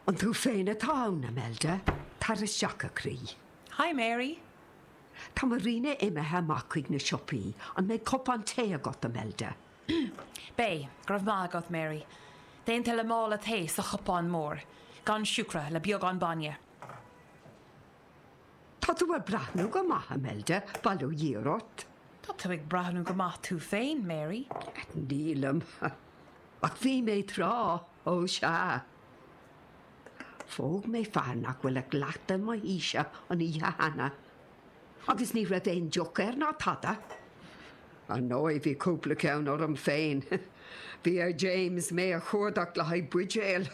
An tú féin atá ann, Imelda? Tar isteach, a chroí. Hi, Mary. Tá Marina imithe amach chuig na siopaí. An mbeidh cupán tae agat, Imelda? Beidh, go raibh maith agat, Mary. Déanta le mála tae sa chupán mór, gan siúcra, le beagán bainne. Tá tú ag breathnú go maith, Imelda, bail ó Dhia ort. Tá tú ag breathnú go maith tú féin, Mary. Nílim, ach bhí mé tráth, ó sea. Phóg mé fear nach bhfuil ach leath mo haoise an oíche cheana, agus ní raibh aon deoch air ná tada. Ar ndóigh, bhí cúpla ceann orm féin. Bhí ar James mé a chuardach le haghaidh buidéil.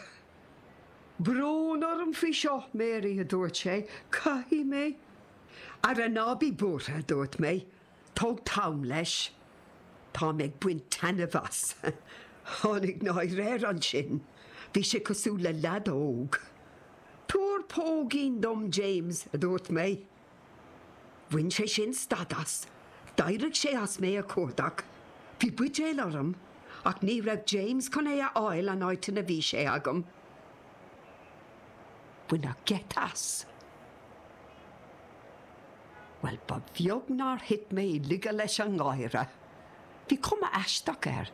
Brón orm faoi seo, Mary, a dúirt sé, caithfidh mé. Ara ná bí buartha, a dúirt mé, tóg t'am leis. Táim ag baint taitneamh as. Tháinig náire air ansin. Bhí sé cosúil le leaid óg. Tabhair póigín dom, James, a dúirt mé. Bhain sé sin stad as. D'éirigh sé as mé a chuardach. Bhí buidéal orm ach ní raibh James chun é a fháil an áit ina bhí sé agam. Baineadh geit as. Bhuel, ba bheag nár thit mé i laige leis an ngáire. Bhí cuma aisteach air.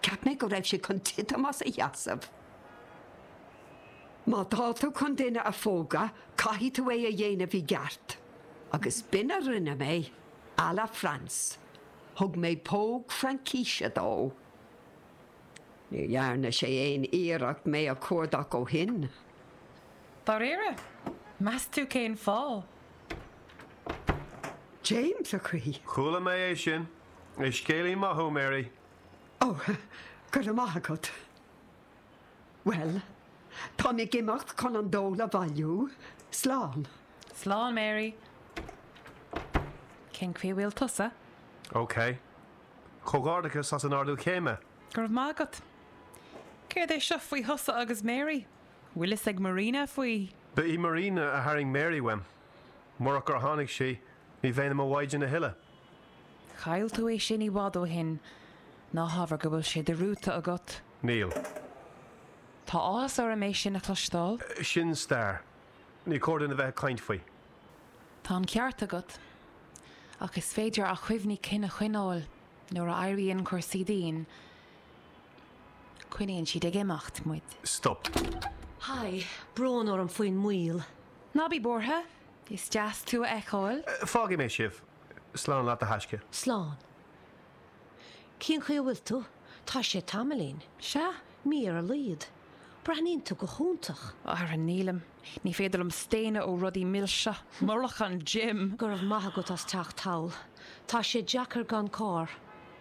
Cheap mé go raibh sé chun titim as a sheasamh. Má tá tú chun duine a phógadh caithfidh tú é a dhéanamh i gceart. Agus b'in a rinne mé, à la Fraince. Thug mé póg Fraincise dó. Níor dhearna sé aon iarracht mé a chuardach ó shin. Dáiríre? Meas tú cén fáth? James, a chroí. Chuala mé é sin. Is scéalaí maith thú, Mary. Ó, go raibh maith agat. Bhuel, táim ag imeacht chun an dól a bhailiú. Slán. Slán, Mary. Cén chaoi a bhfuil tusa? OK. Comhghairdeachas as an ardú céime. Go raibh maith agat. Céard é seo faoi thusa agus Mary? Bhfuil a fhios ag Marina faoi? Ba í Marina a tharraing Mary uaim. Murach gur tháinig sí, ní bheinn i mo mhaighdean a thuilleadh. Chaill tú é sin i bhfad ó shin. Ná habair go bhfuil sé dearmadta agat. Níl. Tá áthas orm é sin a chloisteáil. Sin stair. Ní cóir dúinn a bheith ag caint faoi. Tá an ceart agat. Ach is féidir ár gcuimhní cinn a choinneáil nuair a éiríonn cúrsaí dian. Coinníonn siad ag imeacht muid. Stop. Haigh. Brón orm faoin moill. Ná bí buartha. Is deas tú a fheiceáil. Fágfaidh mé sibh. Slán leat a thaisce. Slán. Cén chaoi a bhfuil tú? Tá sé tamaillín. Sea, mí ar a laghad. Breathnaíonn tú go hiontach. Ara nílim. Ní féidir liom staonadh ó rudaí milse. Murach an gym! Go raibh maith agat as teacht anall. Tá sé deacair gan carr.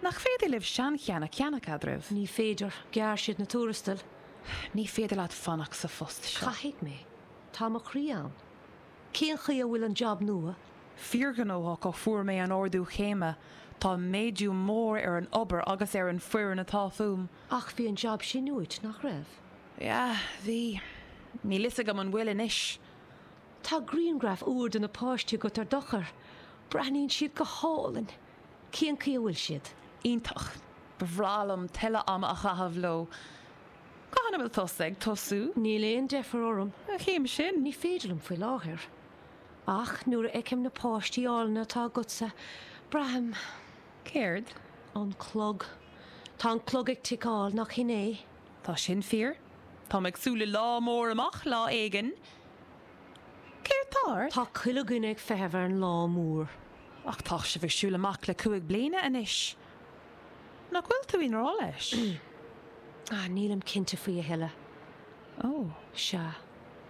Nach féidir libh seancheann a cheannach eadraibh? Ní féidir. Ghearr siad na tuarastail. Ní féidir leat fanacht sa phost seo. Caithfidh mé. Tá mo chroí ann. Cén chaoi a bhfuil an jab nua? Fíorghnóthach ó fuair mé an ardú céime. Tá méadú mór ar an obair agus ar an foireann atá fúm. Ach bhí an jab sin uait, nach raibh? Yeah, bhí. Níl fhios agam an bhfuil anois. Tá griangraf úr de na páistí agat ar d'fhón. Breathnaíonn siad go hálainn! Cén chaoi a bhfuil siad? Iontach. Ba bhreá liom tuilleadh ama a chaitheamh leo. Cathain a bhfuil tusa ag tosú? Níl aon deifir orm. An chéim sin? Ní féidir liom faoi láthair. Ach nuair a fheicim na páistí álainne atá agatsa, braithim. Céard? An clog. Tá an clog ag ticeáil, nach shin é? Tá sin fíor. Táim ag súil le lá mór amach lá éigin. Céard tá ort? Tá chuile dhuine ag feitheamh ar an lá mór. Ach tá sibh ag siúl amach le cúig bliana anois. Nach bhfuil tú i ngrá leis? Nílim cinnte faoi a thuilleadh. Ó. Sea.